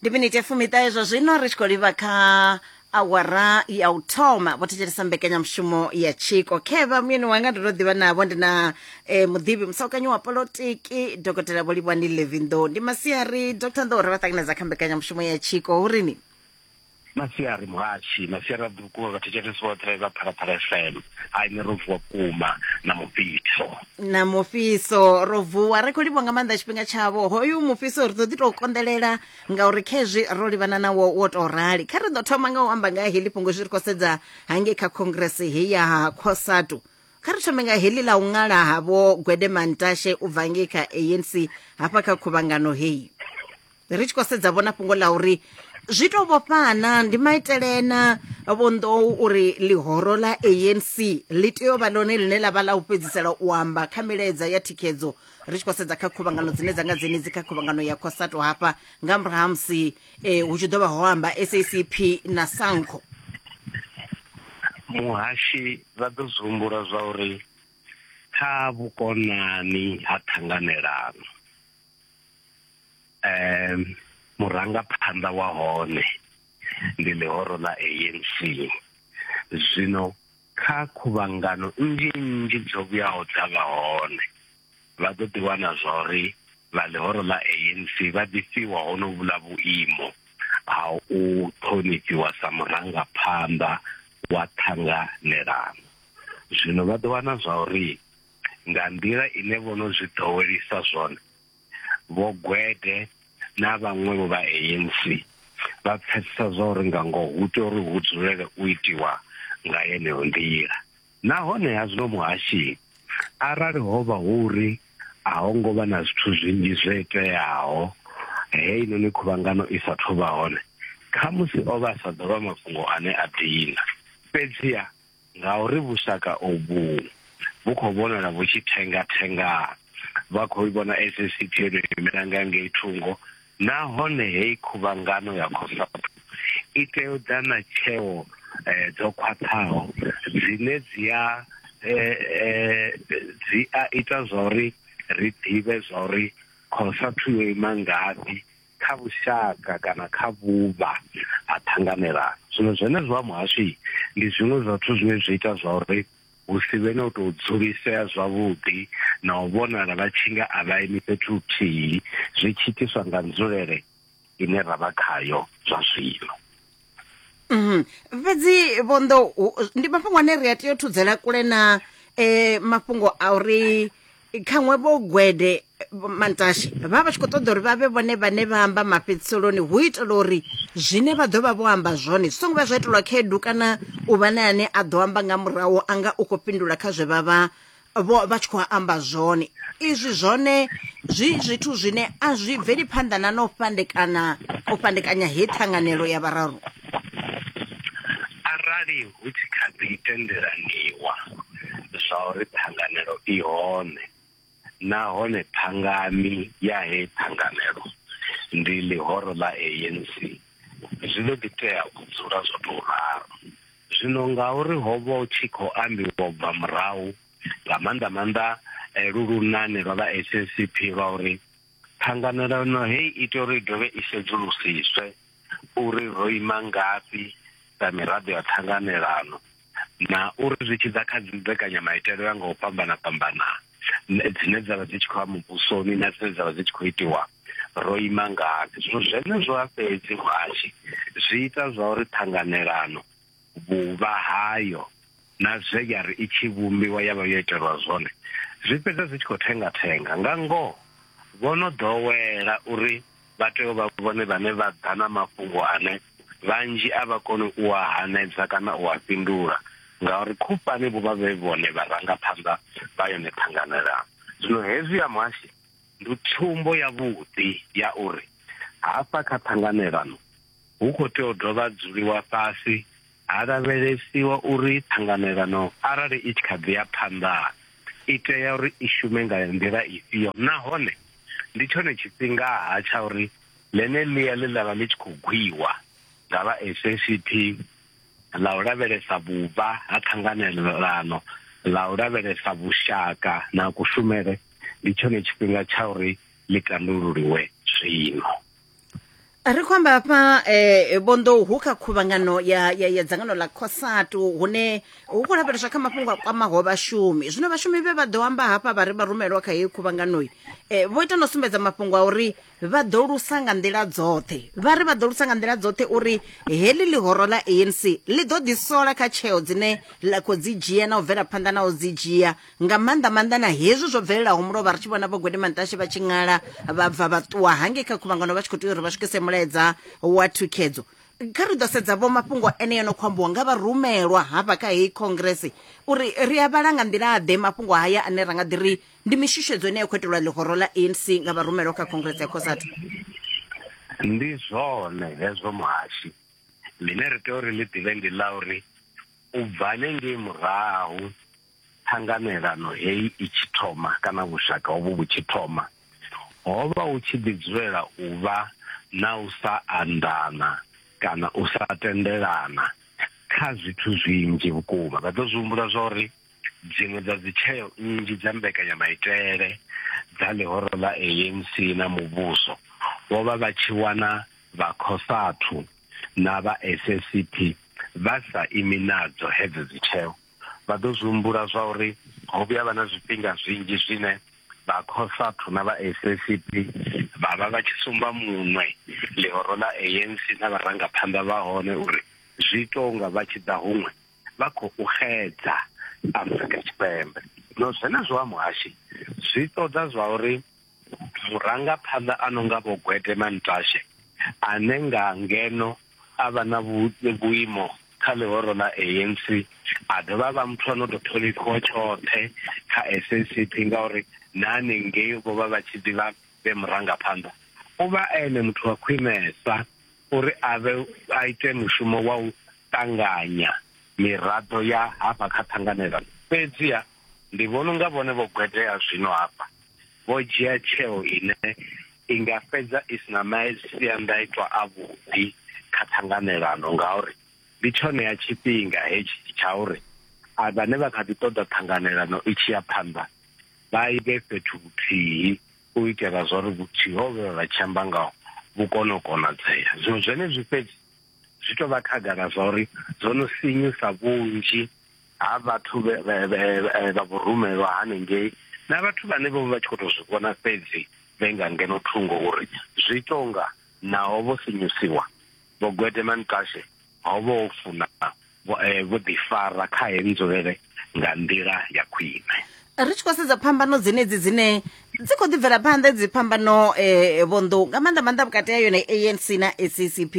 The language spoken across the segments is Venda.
ndi miniti ya fumiṱahe zwa zwino ri tshi khou livha kha awara ya u thoma vho thetshelesa mbekanyamushumo ya tshiko khevha muyeni wanga ndo to ḓivha navho ndi na eh, muḓivhi musaukanyi wa polotiki dokotela vho livhani levinḓo ndi masiari dr nḓo uri vha ṱanganedza kha mbekanyamushumo ya tshiko hu rini masiari muhatshi masiari a ḓukuwa vhathetshelesi vhoṱhe vha phalaphala fm hai ni ro vuwa vhukuma na mufhiso na mufhiso ro vuwa ri khou livha nga maanḓa tshifhinga tshavho hoyu mufhiso ri ḓo ḓi tou konḓelela ngauri khezwi ro livhana nawo wo tou rali kha ri ḓo thoma nga u amba nga heḽi fhungo zwi ri khou sedza hangei kha khongrese he ya cosatu kha ri thome nga heḽi ḽa u ṅala ha vho gwede mantashe u bva ngei kha anc hafha kha khuvhangano heyi ri tshi khou sedza vhona fhungo ḽa uri zwi to vhofhana ndi maitele na vhonḓou uri ḽihoro ḽa anc ḽi tea u vha ḽone ḽine ḽa vha ḽa u fhedzisela u amba kha milaedza ya thikhedzo ri tshi khou sedza kha khuvhangano dzine dza nga dzenedzi kha khuvhangano ya khosato hafha nga murahu ha musi um hu tshi ḓo vha ho amba sacp na sanco muhashi vha ḓo zwi humbula zwa uri kha vhukonani ha ṱhanganelano eh murangaphanḓa wa hone ndi ḽihoro ḽa ANC zwino kha khuvhangano nnzhi nnzhi dzo vhuyaho dza vha hone vha ḓo ḓi wana zwa uri vha ḽihoro ḽa ANC vha ḓi fhiwa hono vhula vhuimo ha u ṱhonifhiwa sa murangaphanḓa wa ṱhanganelano zwino vha ḓo wana zwa uri nga nḓila ine vho no zwi ḓowelisa zwone, Vho Gwede na vhaṅwevho vha ANC vha pfesesa zwa uri nga ngoho hu tea uri hu dzulele u itiwa nga yeneyo nḓila. Nahone ha zwino muhashi, arali ho vha hu uri a ho ngo vha na zwithu zwinzhi zwo iteaho heinoni khuvhangano i sa thu vha hone, khamusi o vha a sa ḓo vha mafhungo ane a dina. Fhedziha. Ngauri vhushaka ovhu vhu khou vhonala vhu tshi thenga-thenga. Vha khou i vhona SACP yo tou imela nga ngei thungo nahone heyi khuvhangano ya Cosatu i tea u ḓa na tsheo dzo khwaṱhaho dzine dzi a dzi a ita zwa uri ri ḓivhe zwa uri Cosatu yo ima ngafhi kha vhushaka kana kha vhuvha ha ṱhanganelano zwino zwenezwo ha muhasho ndi zwiṅwe zwa zwithu zwine zwi ita zwa uri hu si vhe na u tou dzulisea zwavhuḓi na u vhonala vha tshi nga a vha imi fhethu huthihi zwi tshi itiswa nga nzulele ine ra vha khayo zwa zwino Mhm. fhedzi vhonḓo hu- ndi mafhungo ane ri a tea u thudzela kule na um mafhungo a uri khaṅwe vho gwede eh, vho mantashe vha vha vha tshi khou ṱoḓa uri vha vhe vhone vhane vha amba mafhedziseloni hu itela uri zwine vha ḓo vha vho amba zwone zwi songo vha zwa itelwa khaedu kana u vha na ane a ḓo amba nga murahu a nga u khou fhindula kha zwe vha vha vho vha tshi khou amba zwone izwi zwone zwi zwithu zwine a zwi bveli phanḓa na no fhandekana u fhandekanya he ṱhanganelo ya vhararu arali hu tshi kha ḓi tendelaniwa zwa uri ṱhanganelo i hone nahone thangani ya he ṱhanganelo ndi ḽihoro ḽa ANC zwi ḓo ḓi tea u dzula zwo tou ralo Zwino ngauri ho vha hu tshi khou ambiwa u bva murahu, nga maanḓa maanḓa lu lunane lwa vha SACP lwa uri ṱhanganelano hei i tea uri i dovhe i sedzulusiswe uri ro ima ngafhi sa miraḓo ya ṱhanganelano na uri zwi tshi ḓa kha dzimbekanyamaitele u ya nga u fhambana fhambana dzine dza vha dzi tshi khou ya muvhusoni na dzine dza vha dzi tshi khou itiwa ro ima ngafhi zwino zwenezwo a fhedzi muhashi zwi ita zwa uri ṱhanganelano vhuvha hayo na zwe ya ri i tshi vhumbiwa ya vha yo itelwa zwone zwi fhedza zwi tshi khou thenga thenga nga ngoho vho no ḓowela uri vha tea u vha vhone vhane vha ḓa na mafhungo ane vhanzhi a vha koni u a hanedza kana u a fhindula ngauri khufhani vho vha vhe vhone vharangaphanḓa vha yone ṱhanganelano. Zwino hezwi ya muhashi ndi tsumbo yavhuḓi ya uri hafha kha ṱhanganelano hu khou tea u dovha dzuliwa fhasi Ha lavhelesiwa uri ṱhanganelano arali i tshi kha ḓi ya phanḓa i tea uri i shume nga nḓila ifhio nahone ndi tshone tshifhinga-ha tsha uri ḽene ḽia ḽe ḽa vha ḽi tshi khou gwiwa nga vha SACP ḽa u lavhelesa vhuvha ha ṱhanganelano ḽa u lavhelesa vhushaka na kushumele ndi tshone tshifhinga tsha uri ḽi tandululiwe zwino. ri khou amba hafha eh, vhonḓou hu kha khuvhangano ya, ya, ya dzangano ḽa cosatu hune hu khou lavheleswa kha mafhungo a kwamaho vhashumi zwino vhashumi vhe vha ḓo amba hafha vha ri vha rumelwa kha heyi khuvhanganoi eh, vho ita no sumbedza mafhungo a uri vha ḓo lusa nga nḓila dzoṱhe vha ri vha ḓo lusa nga nḓila dzoṱhe uri heḽi ḽihoro ḽa anc ḽi ḓo ḓisola kha tsheo dzine ḽa khou dzi dzhia na u bvela phanḓa na u dzi dzhia nga maanḓa maanḓa na hezwi zwo bvelelaho mulovha ri tshi vhona vhogwede mantashe vha tshi ṅala vha bva vha ṱuwa hangei kha khuvhangano vha tshi khou tea uri vha swikise mulaedza wa thukhedzo kha ri ḓo sedza vho mafhungo ene yo no khou ambiwa nga vharumelwa hafha kha heyi congress uri ri a vhala nga nḓila ḓe mafhungo haya ane ra nga ḓi ri ndi mishushedzo ine ya khou itelwa ḽihoro ḽa anc nga vharumelwa kha congress ya cosatu ndi zwone hezwo muhashi ḽine ri tea uri ḽi ḓivhe ndi ḽa uri u bva hanengei murahu ṱhanganelano heyi i tshi thoma kana vhushaka hovhu vhu tshi thoma, ho vha hu tshi ḓi dzulela u vha na u sa anḓana kana u sa tendelana kha zwithu zwinzhi vhukuma. Vha ḓo zwi humbula zwa uri dziṅwe dza dzi tsheo nnzhi dza mbekanyamaitele dza ḽihoro ḽa ANC na muvhuso vho vha vha tshi wana vha Cosatu na vha SACP vha sa imi nadzo hedzo dzi tsheo. vha ḓo zwi humbula zwa uri ho vhuya vha na zwifhinga zwinzhi zwine vha Cosatu na vha SACP vha vha vha tshi sumba muṅwe ḽihoro ḽa ANC na vharangaphanḓa vha hone uri zwi tou nga vha tshi ḓa huṅwe vha khou xedza Afrika Tshipembe. No zwenezwo ha muhashi zwi ṱoḓa zwa uri Vhurangaphanḓa a no nga Vho Gwede Mantashe ane nga ngeno a vha na vhuimo kha ḽihoro ḽa ANC a dovha a vha muthu a no tou ṱhonifhiwa tshoṱhe kha SACP ngauri na hanengei vho vha vha tshi ḓivha vhe murangaphanḓa, u vha e ene muthu wa khwinesa uri a vhe a ite mushumo wa u ṱanganya miraḓo ya hafha kha ṱhanganelano. Fhedziha Ndi vhona unga vhone vho gwetea zwino hafha, vho dzhia tsheo ine i nga fhedza i si na maisiandaitwa avhuḓi kha ṱhanganelano ngauri ndi tshonea tshifhinga hetshi tsha uri a vhane vha kha ḓi ṱoḓa ṱhanganelano i tshi ya phanḓa vha i vhe fhethu huthihi u itela zwa uri vhuthihi ho vhe vha tshi amba ngaho vhu kone u konadzea. Zwino zwenezwi fhedzi zwi tou vha khagala zwa uri zwo no sinyusa vhunzhi ha vhathu vha vhurumelwa hanengei na vhathu vhane vho vha tshi khou tou zwi vhona fhedzi vhe nga ngeno thungo uri zwi tonga naho vho sinyusiwa vho gwedema ntashe ho vho funa vho eh, ḓifara kha he nzulele nga nḓila ya khwine ri tshi khou sedza phambano dzenedzi dzine dzi khou ḓibvela phanḓa dzi phambano um eh, vhonḓou nga maanḓa maanḓa vhukati ha yone anc na saccp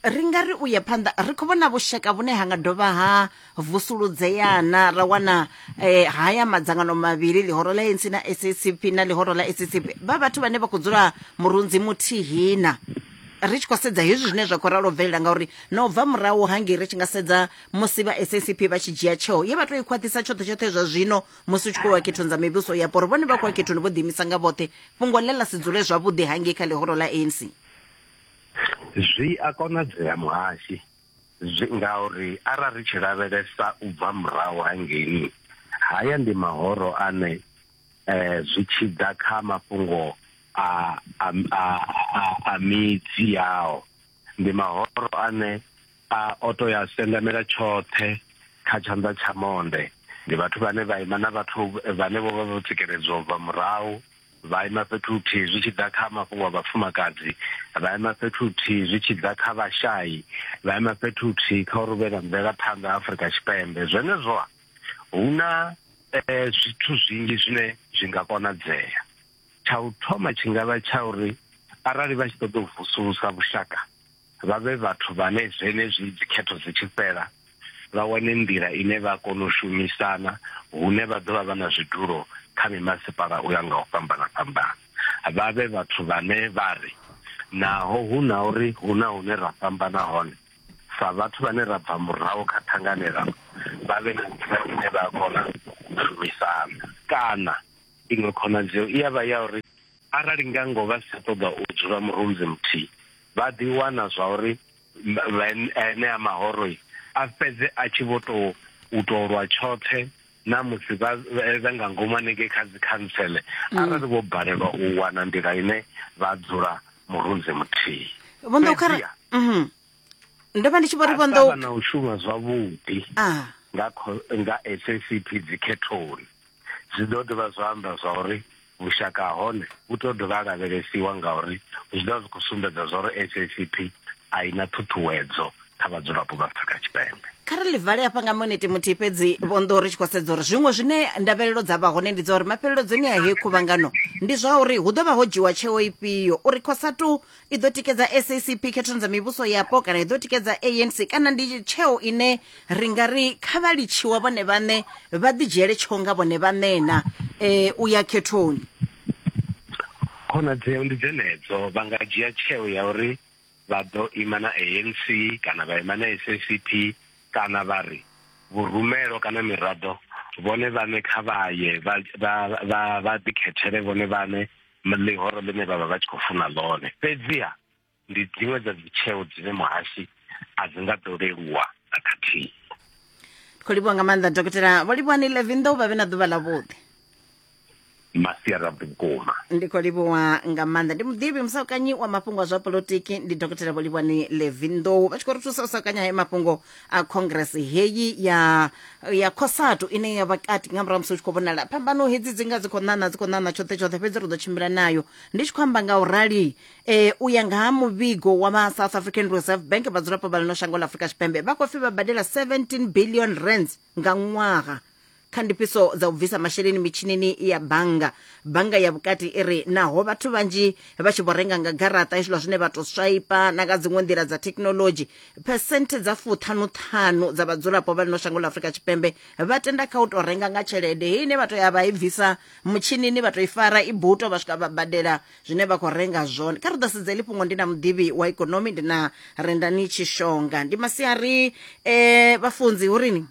ri nga ri u ye phanḓa ri khou vhona vhushaka vhune ha nga dovha ha vusuludzeana ra wana eh, haya madzangano mavhili ḽihoro ḽa ANC na SACP na ḽihoro ḽa SACP vha vhathu vhane vha khou dzula murunzi muthihina ri tshi khou sedza hezwi zwine zwa khou ralo bvelela ngauri na u bva murahu hangei ri tshi nga sedza musi vha SACP vha tshi dzhia tsheo ye vha tou i khwaṱhisa tshoṱhe tshoṱhe zwa zwino musi u tshi khou wa khethoni dza mivhuso yapo uri vhone vha khou wa khethoni vho ḓiimisa nga vhoṱhe fhungo ḽe ḽa si dzule zwavhuḓi hangei kha ḽihoro ḽa ANC Zwi a konadzea muhashi zwi ngauri arali ri tshi lavhelesa u bva murahu hangei haya ndi mahoro ane eh zwi tshi ḓa kha mafhungo a a a a midzi yao ndi mahoro ane a o to ya sendamela tshoṱhe kha tshanḓa tsha monde ndi vhathu vhane vha ima na vhathu vhane vho vha vho tsikeledzwa u bva murahu. Vha ima fhethu huthihi zwi tshi ḓa kha mafhungo a vhafumakadzi, vha ima fhethu huthihi zwi tshi ḓa kha vhashai, vha ima fhethu huthihi kha uri hu vhe na mvelaphanḓa Afrika Tshipembe. Zwenezwo-ha, hu na zwithu zwinzhi zwine zwi nga konadzea. Tsha u thoma tshi nga vha tsha uri arali vha tshi ṱoḓa u vusulusa vhushaka vha vhe vhathu vhane zwenezwi dzikhetho dzi tshi fhela, vha wane nḓila ine vha kona u shumisana hune vha ḓo vha vha na zwidulo kha mimasipala u ya nga u fhambana-fhambana. Vha vhe vhathu vhane vha ri, Naho hu na uri hu na hune ra fhambana hone, sa vhathu vhane ra bva murahu kha ṱhanganelano, vha vhe na nḓila ine vha a kona u shumisana. Kana, iṅwe khonadzeo i a vha ya uri Arali nga ngoho vha si tsha ṱoḓa u dzula murunzi muthihi, vha ḓi wana zwauri enea mahoro a fhedze a tshi vho tou u tou lwa tshoṱhe na musi vha vhe nga ngomu hanengei kha dzi khantsele mm. arali vho balelwa u wana nḓila ine vha dzula murunzi muthihi. Vho Nḓokhara, mhm. Ndo vha ndi tshi vho ri vho Nḓokhara. na u shuma zwavhuḓi ah. nga nga SACP dzikhethoni. Zwi ḓo dovha zwa amba zwa uri vhushaka ha hone vhu tou dovha ha lavhelesiwa ngauri zwi ḓovha zwi khou sumbedza zwa uri SACP a i na ṱhuṱhuwedzo kha vhadzulapo vha Afrika Tshipembe. Kha ri ḽi vale hafha nga minete muthihi fhedzi vho nḓo ri tshi khou sedza uri zwiṅwe zwine ndavhelelo dza vha hone ndi dza uri mafheleledzoni a heyi khuvhangano ndi zwa uri hu ḓo vha ho dzhiwa tsheo ifhio uri Cosatu i ḓo tikedza sacp khethoni dza mivhuso yapo kana i ḓo tikedza anc kana ndi tsheo ine ri nga ri kha vha litshiwa vhone vhaṋe vha ḓidzhiele tsheo nga vhone vhaṋena um u ya khethoni khonadzeo ndi dzenedzo vha nga dzhia tsheo ya uri vha ḓo ima na anc kana vha ima na sacp kana vha ri vhurumelo kana miraḓo vhone vhaṋe kha vha ye vha ḓikhethele vhone vhaṋe ḽihoro ḽine vha vha vha tshi khou funa ḽone fhedziha ndi dziṅwe dza dzitsheo dzine muhasi a dzi nga ḓo leluwa na khathihi khou livhuwa nga maanḓa dokotela vho livhuwa ni levin ḓo vha vhe na ḓuvha ḽa vhuḓi masiara vhukuma ndi khou livhuwa nga maanḓa ndi muḓivhi musaukanyi wa mafhungo a zwa polotiki ndi dokotela vho livhuwani levin ḓou vha tshi khou ri thusa u saukanya hae mafhungo a congress heyi ya ya cosatu ine ya vha kati nga murahu musi u tshi khou vhonala phambano hedzi dzi nga dzi khou ṋaṋa dzi khou ṋaṋa tshoṱhe tshoṱhe fhedzi ri ḓo tshimbila nayo ndi tshi khou amba nga u rali um u ya nga ha muvhigo wa vha south african reserve bank vhadzulapo vha ḽino shango ḽa afurika tshipembe vha khou pfi vha badela 17 billion rands nga ṅwaha kha ndifhiso dza u bvisa masheleni mitshinini ya bannga bannga ya vhukati i ri naho vhathu vhanzhi vha tshi vho renga nga garaṱa hezwiḽa zwine vha tou swaipa na nga dziṅwe nḓila dza thekhinolodzhi phesenthe dza fuṱhanuṱhanu dza vhadzulapo vha lino shango ḽa afurika tshipembe vha tenda kha u tou renga nga tshelede heyi ine vha tou ya vha i bvisa mutshinini vha tou i fara i buto vha swika vha badela zwine vha khou renga zwone kha ri ḓo sedza heḽi fhungo ndi na muḓivhi wa ikonomi ndi na rendani tshishonga ndi masiari um vhafunzi hu rini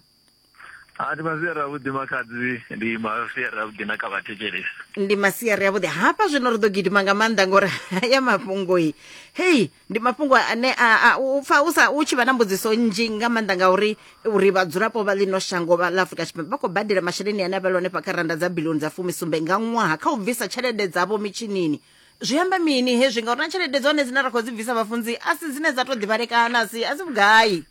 a ndi masiari avhuḓi makhadzi ndi masiari avhuḓi na kha vhathetshelesi ndi masiari avhuḓi hafha zwino ri ḓo gidima nga maanḓa ngori haya mafhungoi hei ndi mafhungo ane u pfa u sa u tshi vha na mbudziso nnzhi nga maanḓa nga uri uri vhadzulapo vha ḽino shango vha ḽa afrika tshipembe vha khou badela masheleni ane a vha lone fha kha randa dza bilioni dza fumisumbe nga ṅwaha kha u bvisa tshelede dzavho mitshinini zwi amba mini hezwi ngauri na tshelede dzone dzine ra khou dzi bvisa vhafunzi a si dzine dza tou ḓivhalekana a si a si vhugai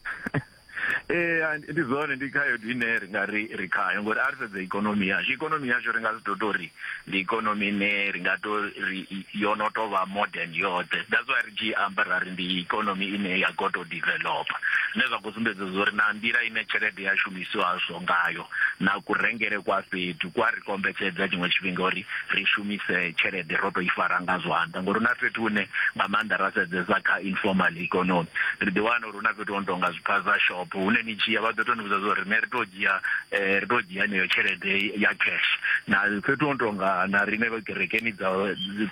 ee eh, ndi zwone ndi khaedu ine ri nga ri ri khayo ngori a ri sedze ikonomi yashu ikonomi yashu ri nga si to to ri ndi ikonomi ine ri nga to ri yo no to vha modern yoṱhe that's why ri tshi amba ra ri ndi ikonomi ine ya go to developer zwine zwa khou sumbedza zwori na nḓila ine tshelede ya shumisiwa zwo ngayo na ku rengele kwa fhethu kwa ri kombetshedza tshiṅwe tshifhinga uri ri shumise tshelede ro to i fara nga zwanḓa ngori na fhethu hune nga maanḓa ra sedzesa kha informal economy ri ḓi wana hu na fhethu ho no tonga zwiphaza shop hune ni tshiya vha ḓo to ni vhudza zwa uri rine ri to dzhia eh, ri to dzhia heneyo tshelede ya cash na fhethu ho no tonga na rine vha kerekeni dza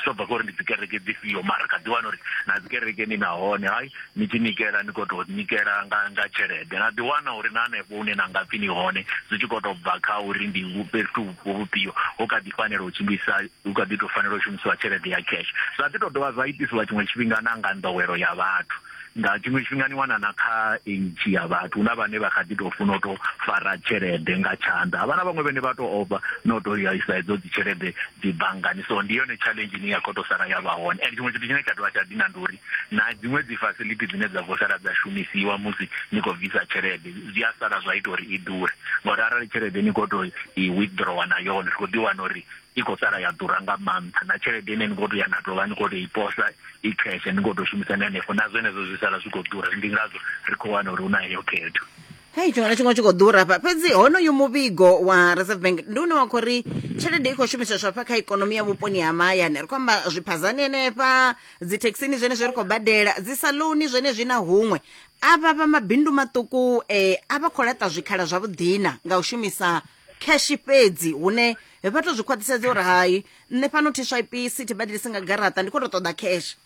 zwo bva kha uri ndi dzi kereke dzifhio mara kha ḓi wana uri na dzi kerekeni nahone hayi ni tshi nikela ni khou tou nikela nga nga tshelede na ḓi wana uri na hanefho hune na nga pfi ni hone zwi tshi khou tou bva kha uri ndi vhu- fhethu vhupo vhufhio hu kha ḓi fanela u tshimbilisa hu kha ḓi tou fanela u shumisiwa tshelede ya cash zwa ḓi tou dovha zwa itisiwa tshiṅwe tshifhinga na nga nḓowelo ya vhathu nga tshiṅwe tshifhinga ni wana na kha age ya vhathu huna vhane vha kha ḓi tou funa u tou fara tshelede nga tshanḓa havha na vhaṅwe vhene vha tou ofha na u tou ya isa hedzo dzi tshelede dzi banngani so ndi yone challenge ine ya khou tou sala ya vha hone and tshiṅwe tshithu tshine tsha dovha tsha dina ndi uri na dziṅwe dzi facility dzine dza khou sala dza shumisiwa musi ni khou bvisa tshelede zwi a sala zwa ita uri i ḓure ngauri arali tshelede ni khou tou i withdrawer na yone ri khou ḓi wana uri i khou sala ya ḓura nga maanḓa na tshelede ine ni khou tou ya na tovha ni khou tou i posa i cash ni khou tou shumisa ni hanefho na zwenezwo zwi sala zwi khou ḓura ndi ngazwo ri khou wana uri hu na heyo khetho hei tshiṅwe na tshiṅwe tshi khou ḓura hafha fhedzi honoyu muvhigo wa reserve bank ndi une wa khou ri tshelede i khou shumiseswa hafha kha ikonomi ya vhuponi ha mahayani ri khou amba zwiphazani henefha dzithekhisini zwenezwi ri khou badela dzi saloni zwenezwi na huṅwe avha vha mabindu maṱuku um a vha khou laṱa zwikhala zwavhuḓina nga u shumisa cash fhedzi hune vha to zwi khwaṱhisedza uri hai nṋe fhano tship sithi badelisi nga garaṱa ndi khou to ṱoḓa cash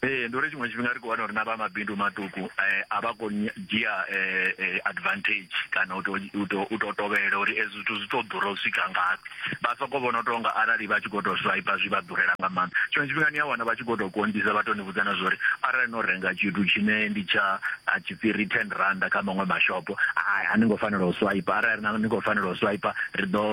ee ndi uri tshiṅwe tshifhinga ri khou wana uri na vha mabindu maṱuku um a vha khou dzhia um advantage kana u tou tovhelela uri ezwi zwithu zwi tou ḓura u swika ngafhi vha sokou vhona u tou nga arali vha tshi khou tou swipe zwi vha ḓurela nga maanḓa tshiṅwe tshifhinga ni a wana vha tshi khou tou konḓisa vha tou ni vhudza na zwa uri arali no renga tshithu tshine ndi tsha dzi return randa kha maṅwe mashopo hai a ni ngo fanela u swipe arali na ni khou fanela u swipe ri ḓo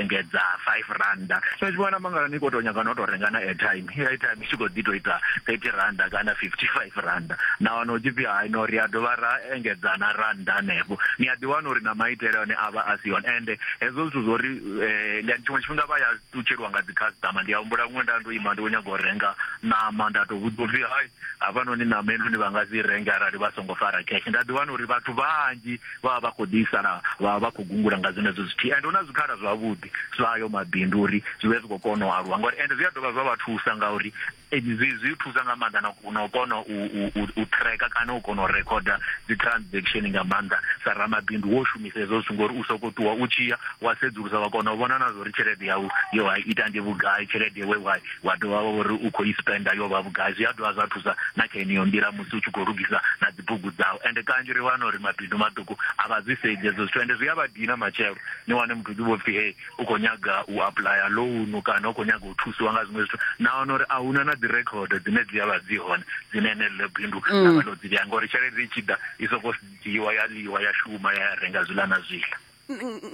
engedza 5 randa so tshi vhona mangala ni khou tou nyaga no tou renga na airtime airtime i tshi khou ḓi tou ita 30 randa kana 55 randa na wana u tshi pfhi hai no ri a dovha ra engedza na randa hanefho ni a ḓi wana uri na maitele one a vha a si one ende hezwo zwithu zwo ri eh, ndi tshiṅwe tshifhinga vha ya ṱutshelwa nga dzi customer ndi a humbula huṅwe nda ndo ima ndi kho nyaga u renga ṋama nda to vhudzwa upfi hai havhanoni ṋama heinoni vha nga si renge arali vha songo fara cash nda ḓi wana uri vhathu vhanzhi vha vha vha khou ḓi sala vha vha vha khou gungula nga zwenezwo zwithihi and hu na zwikhala zwavhuḓi zwa ayo mabindu uri zwi vhe zwi khou kona u aluwa ngauri and zwi a dovha zwa vha thusa ngauri Ee, zwi zwi thusa nga maanḓa na na u kona u u u u tracker kana u kona u recorder dzi transaction nga maanḓa sa ramabindu wo shumisa hezwo zwithu ngori u soko ṱuwa u tshi ya wa sedzulusa wa kona u vhona na zwori tshelede yau yo wa ita ndi vhugai tshelede we wa wa dovha wa uri u khou i spenda yo vha vhugai zwi a dovha zwa thusa na kha yeneyo nḓila musi u tshi khou lugisa na dzi bugu dzau ende kanzhi ri wana uri mabindu maṱuku a vha zwi sedzi hezwo zwithu ende zwi a vha dina matshelo ni wane muthu ḓi vho pfhi hey u khou nyaga u apuḽaya lounu kana u khou nyaga u thusiwa nga zwiṅwe zwithu na wana uri a huna na dzi record dzine dzi avha dzi hone dzine ene ḽo bindu mm. na vha ḽo dzi vhea ngori tshelede i tshi ḓa i sokou dzhiiwa ya ḽiwa ya shuma ya ya renga zwiḽa na zwiḽa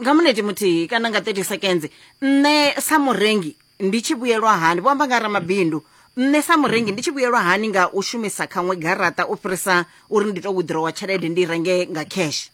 nga muneti muthihi kana nga 30 seconds nṋe sa murengi ndi tshi vhuyelwa hani vho amba nga ramabindu nṋe sa murengi ndi tshi vhuyelwa hani nga u shumisa khaṅwe garaṱa u fhirisa uri ndi to withdrawa tshelede ndi renge nga cash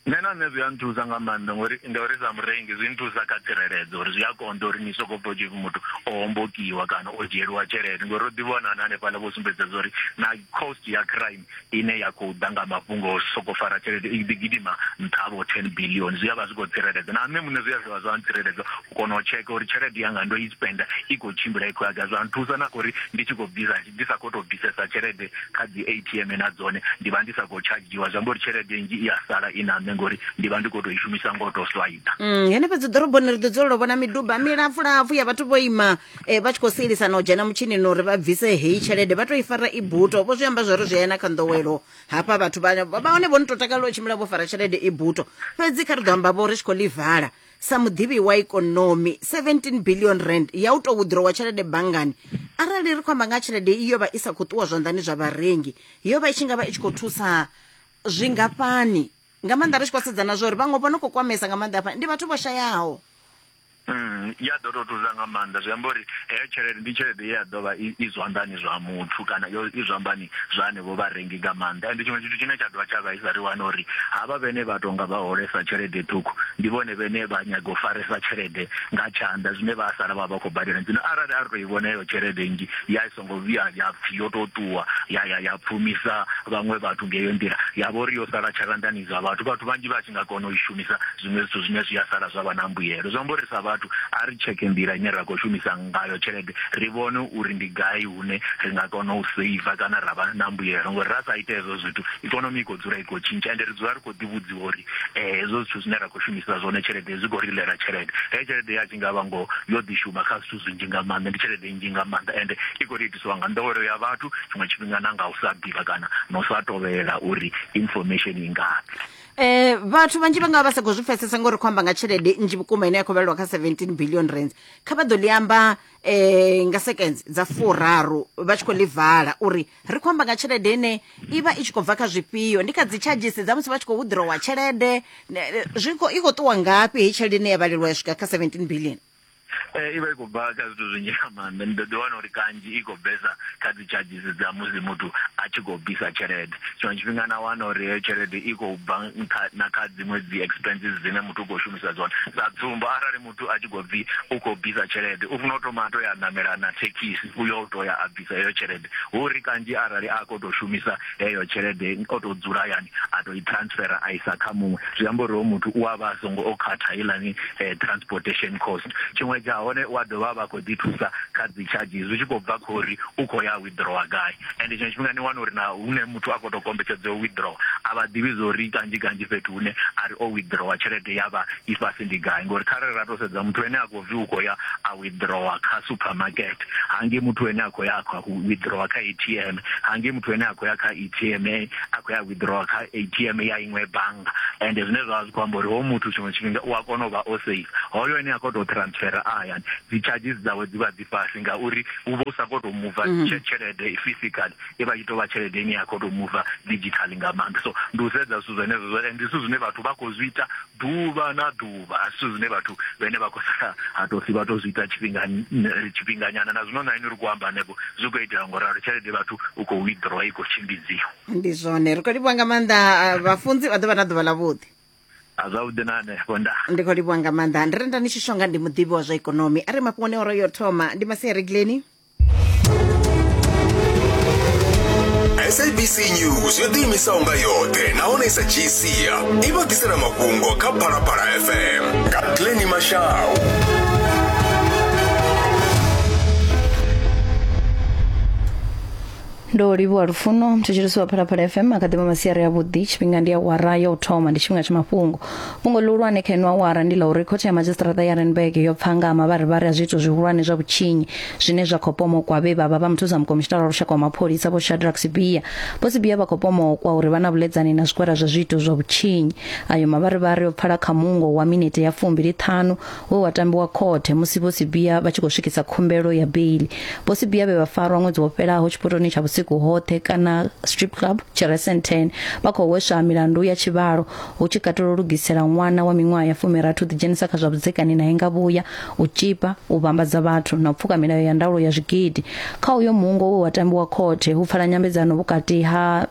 Nṋe na nṋe zwi a nthusa nga maanḓa ngori ngauri sa murengi zwi nthusa kha tsireledzo uri zwi a konḓa uri ni soko pfha tshipfi muthu o hombokiwa kana o dzhieliwa tshelede ngori ro ḓi vhona na hanefhaḽa vho sumbedza zwa uri na cost ya crime ine ya khou ḓa nga mafhungo o soko fara tshelede i ḓi gidima nṱha vho ten billion zwi a vha zwi khou tsireledza na nṋe muṋe zwi a dovha zwa ntsireledza u kona u tsheka uri tshelede yanga ndo i spender i khou tshimbila i khou ya gai zwa nthusa na kha uri ndi tshi khou bvisa ndi sa khou tou bvisesa tshelede kha dzi ATM na dzone ndi vha ndi sa khou tshadzhiwa zwi amba uri tshelede nzhi i ya sala i na nṋe ngori ndi vha ndi khou tou i shumisa ngo tou swaita Mm, henefha dzi ḓoroboni ri ḓo dzulela u vhona miduba milapfulapfu ya vhathu vho ima eh, vha tshi khou sielisana u dzhena mutshinini uri vha bvise heyi tshelede vha tou i fara i buto vho zwi amba zwori zwi ena kha nḓowelo hafha vhathu vha vha hone vho ni tou takalela u tshimbila vho fara tshelede i buto fhedzi kha ri ḓo amba vho ri tshi khou ḽi vala sa muḓivhi wa ikonomi 17 billion rand ya u tou withdrawa tshelede banngani arali ri khou amba nga tshelede i yo vha i sa khou ṱuwa zwanḓani zwa vharengi yo vha i tshi nga vha i tshi khou thusa zwingafhani nga maanḓa ri tshi khou sedzana zwa uri vhaṅwe vho no khou kwamesa nga maanḓa hafha ndi vhathu vho shayaho Mm, ya ḓo tou thusa nga maanḓa zwi amba uri heyo tshelede ndi tshelede ye ya ḓo vha i zwanḓani zwa muthu kana i zwambani zwa henevho vharengi nga maanḓa. Ende tshiṅwe tshithu tshine tsha dovha tsha vhaisa ri wana uri havha vhene vha tonga vha holesa tshelede ṱhukhu ndi vhone vhene vha nyaga u faresa tshelede nga tshanḓa zwine vha sala vha vha khou badela zwino arali a ri to i vhona heyo tshelede nnzhi ya i songo vhuya ya pfhi yo to ṱuwa ya ya ya pfumisa vhaṅwe vhathu ngeyo nḓila ya vha uri yo sala tshalanḓani zwa vhathu vhathu vhanzhi vha tshi nga kona u i shumisa zwiṅwe zwithu zwine zwi a sala zwa vha na mbuyelo zwi amba uri sa vhathu a ri tsheke nḓila ine ra khou shumisa ngayo tshelede ri vhone uri ndi gai hune ri nga kona u seiva kana ra vha na mbuyelo ngori ra sa ita hezwo zwithu ikonomi i khou dzula i khou tshintsha ende ri dzula ri khou ḓivhudziwa uri eh, hezwo zwithu zwine ra khou shumisa zwone tshelede zwi khou ri ḽela tshelede heyo tshelede ya tshi nga vha ngoho yo ḓi shuma kha zwithu zwinzhi nga maanḓa ndi tshelede nnzhi nga maanḓa ende i khou ri itisiwa nga nḓowelo ya vhathu tshiṅwe tshifhinga na nga u sa ḓivha kana na u sa tovhela uri information i ngafhi Eh vhathu vhanzhi vha nga vha sa khou zwi pfesesa ngori khou amba nga tshelede nnzhi vhukuma ine ya khou vhelelwa kha 17 billion rands kha vha ḓo ḽi amba um nga seconds dza furaru vha tshi khou ḽi vala uri ri khou amba nga tshelede ine i vha i tshi khou bva kha zwifhio ndi kha dzi tshadzhisi dza musi vha tshi khou withdrawa tshelede zwi khou i khou ṱuwa ngafhi heyi tshelede ine ya vhalelwa ya swika kha seventeen billion Eh, i vha i khou bva kha zwithu zwinzhi nga maanḓa ni ḓo ḓi wana uri kanzhi i khou bvesa kha dzi charges dza musi muthu a tshi khou bvisa tshelede tshiṅwe tshifhinga na wana uri heyo tshelede i khou bva na kha dziṅwe dzi expenses dzine muthu u khou shumisa dzone sa tsumbo arali muthu a tshi khou bvi u khou bvisa tshelede u funa u thoma a to ya namela na thekhisi u yo to ya a bvisa heyo tshelede hu ri kanzhi arali a khou to shumisa heyo tshelede o to dzula hayani a to i transfer a isa kha muṅwe zwi amba uri ho muthu u avha songo o khatha ilani eh, transportation cost tshiṅwe tsha hone wa dovha vha khou ḓi thusa kha dzi charges zwi tshi khou bva khori u khou ya withdrawer gai and tshiṅwe tshifhinga ni wana uri na hune muthu a khou tou kombetshedzea u withdraw a vha ḓivhi zwo ri kanzhi kanzhi fhethu hune a ri o withdrawer tshelede ya vha i fhasi ndi gai ngori kharali ra tou sedza muthu ene a khou bvi u khou ya a withdrawer kha supermarket hangei muthu ene a khou ya a khou withdrawer kha a t m hangei muthu ene a khou ya kha a t m a khou ya withdrawer kha a t m ya iṅwe bannga and zwine zwa vha zwi khou amba uri ho muthu tshiṅwe tshifhinga u a kona u vha o safe hoyo ene a khou tou transfera a hayani dzi charges dzawe dzi vha fhasi ngauri u vha u sa khou tou muva mm -hmm. tshelede physical i vha i tou vha tshelede ine ya khou tou muva digital nga maanḓa so ndi u sedza zwithu zwenezwo zwo ndi zwithu zwine vhathu vha khou zwi ita ḓuvha na ḓuvha a zwithu zwine vhathu vhene vha khou sala ha tou si vha tou zwi ita tshifhinga tshifhinganyana na zwino na ini ri khou amba hanefho zwi khou itea ngo ralo tshelede vhathu u khou withdraw i khou tshimbidziwa ndi zwone ri khou livhuwa nga maanḓa vhafunzi vha ḓo vha na ḓuvha ḽavhuḓi a zwavhuḓi na hanefho nda ndi khou livhuwa nga maanḓa ndi renda ni tshi shonga ndi muḓivhi wa zwa ikonomi a re mafhungoni oro yo thoma ndi masia regileni sabc news yo ḓiimisaho nga yoṱhe nahone i sa dzhii sia i vha ḓisela mafhungo kha phalaphala fm nga glenni mashau ndo livhuwa lufuno mthetshelesi wa phalaphala fm akadema masiari avhuḓi tshifhinga ndi awara ya u thoma ndi tshifhinga tsha mafhungo fhungo ḽihulwane kha ino awara ndi ḽa uri khothe ya madzhisiṱiraṱa ya renberg yo pfa nga ha mavharivhari a zwiito zwihulwane zwa vhutshinyi zwine zwa khou pomokwa vhe vhavha vha muthusa mukomishinala wa lushaka wa mapholisa vho shadrack sibia vho sibia vha khou pomokwa uri vha na vhuledzani na zwigwada zwa zwiito zwa vhutshinyi ayo mavharivhari o pfala kha mungo wa minete ya fumbili ṱhanu we wa tambiwa khothe musi vho Sibiya vha tshi khou swikisa khumbelo ya beili. Vho Sibiya vhe vha farwa ṅwedzi wo fhelaho tshipotoni tsha vhusiku hoṱhe kana strip club tshi re Sandton vha khou hweswa milandu ya tshivhalo hu tshi katela u lugisela ṅwana wa miṅwaha ya fumirathi u ḓidzhenisa kha zwa vhudzekani nae nga vhuya, u tzhipa, u vhambadza vhathu na u pfuka milayo ya ndaulo ya zwigidi. Kha uyo muungo we wa tambiwa khothe, hu pfala nyambedzano vhukati ha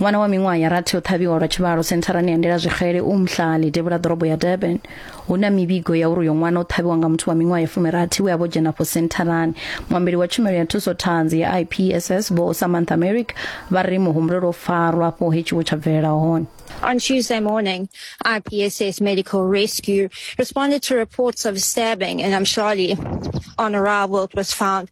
ṅwana wa miṅwaha ya rathi o ṱhavhiwa lwa tshivhalo sentharani ya ndela zwixele u mhlali devhula ḓorobo ya durban hu na mivhigo ya uri uyo ṅwana o ṱhavhiwa nga muthu wa miṅwaha ya fumirathi we a vho dzhena afho sentharani muambeli wa tshumelo ya thuso ṱhanzi ya ipss vho samantha merrick vha ri muhumbulo lwo farwa afho he tshiwo tsha bvelela hone On Tuesday morning, IPSS Medical Rescue responded to reports of a stabbing in Amshali. On arrival, it was found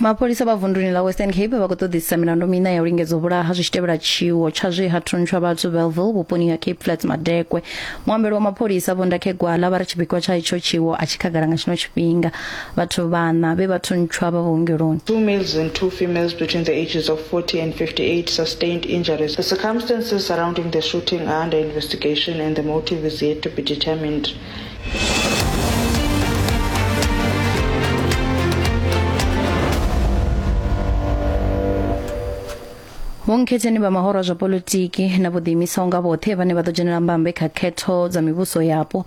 mapholisa vha vunduni ḽa western cape vha khou ṱoḓisisa milandu miṋa ya u lingedza u vhulaha zwi tshi tevhela tshiwo tsha zwe ha thuntsha vhathu belville vhuponi ha cape flats madekwe muambeli wa mapholisa vho ndakhegwala vha ri tshipikwa tsha itsho tshiwo a tshi khagala nga tshino tshifhinga vhathu vhana vhe vha thuntsha vha vhuongeloni Two males and two females between the ages of 40 and 58 sustained injuries. The circumstances surrounding the shooting are under investigation and the motive is yet to be determined. vhonkhetheni vha mahoro zwa politiki na vho ḓiimisaho nga vhoṱhe vhane vha ḓo dzhenela mbambe kha khetho dza mivhuso yapo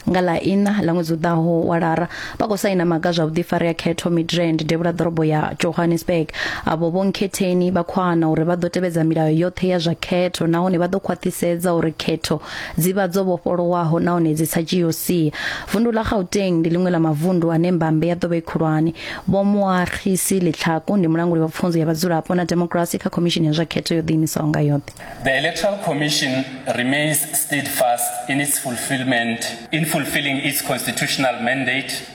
nga ḽa ina ḽa ṅwedzi u ḓaho wa lara vha khou saina maga zwa vhuḓifari ya khetho midrand devhula ḓorobo ya johannesburg avho vhonkhetheni vha khou ana uri vha ḓo tevhedza milayo yoṱhe ya zwa khetho nahone vha ḓo khwaṱhisedza uri khetho dzi vha dzo vhofholowaho nahone dzi sa dzhii u sia vundu ḽa gauteng ndi ḽiṅwe ḽa mavundu ane mbambe ya ḓo vha i khulwane vho muarhisi ḽitlhaku ndi mulanguli wa pfunzo ya vhadzulapo na demokirasi kha khomishini ya zwa khetho yo ḓiimisaho nga yoṱhe The Electoral Commission remains steadfast in its fulfillment in fulfilling its constitutional mandate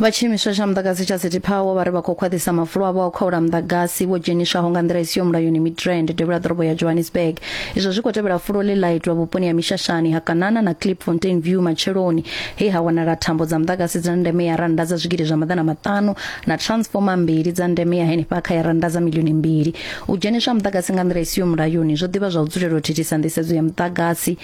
vha tshiimiswa tsha muḓagasi tsha city power vha ri vha khou khwaṱhisa mafulo avho a u khaula muḓagasi wo dzheniswaho nga nḓila i siho mulayoni midrand devhula ḓorobo ya johannesburg izwo zwi khou tevhela fulo ḽe ḽa itwa vhuponi ha mishashani ha kanana na clip fontain view matsheloni he ha wanala thambo dza muḓagasi dza ndeme ya rannda dza zwigidi zwa maḓana maṱanu na transformer mbili dza ndeme ya henefha kha ya rannda dza milioni mbili U dzheniswa ha muḓagasi nga nḓila i siho mulayoni zwo ḓivha zwa u dzulela u thithisa nḓisedzo ya muḓagasi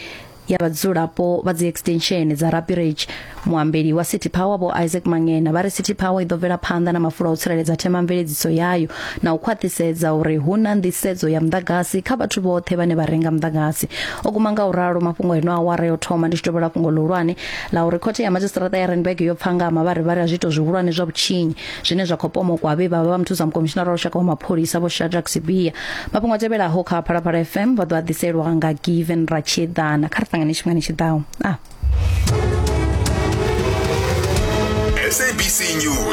ya vhadzulapo vha dzi extension dza Rapirage muambeli wa City Power vho Isaac Mangena vha ri City Power i ḓo bvela phanḓa na mafulo a u tsireledza themamveledziso yayo na u khwaṱhisedza uri hu na nḓisedzo ya muḓagasi kha vhathu vhoṱhe vhane vha renga muḓagasi o guma nga u ralo mafhungo eno awara yo thoma ndi tshi tovhola fhungo ḽihulwane ḽa uri khothe ya madzhisiṱaraṱa ya Randburg yo pfa nga ha mavharivhari a zwiito zwihulwane zwa vhutshinyi zwine zwa khou pomokwa vhe vha vha vha muthusa mukomishinara wa lushaka wa mapholisa vho shadrack sibia mafhungo a tevhelaho kha phalaphala fm vha ḓo a ḓiselwa nga given ratshieḓana kha ri ṱangane tshifhingani tshi ḓaho ah. SABC News.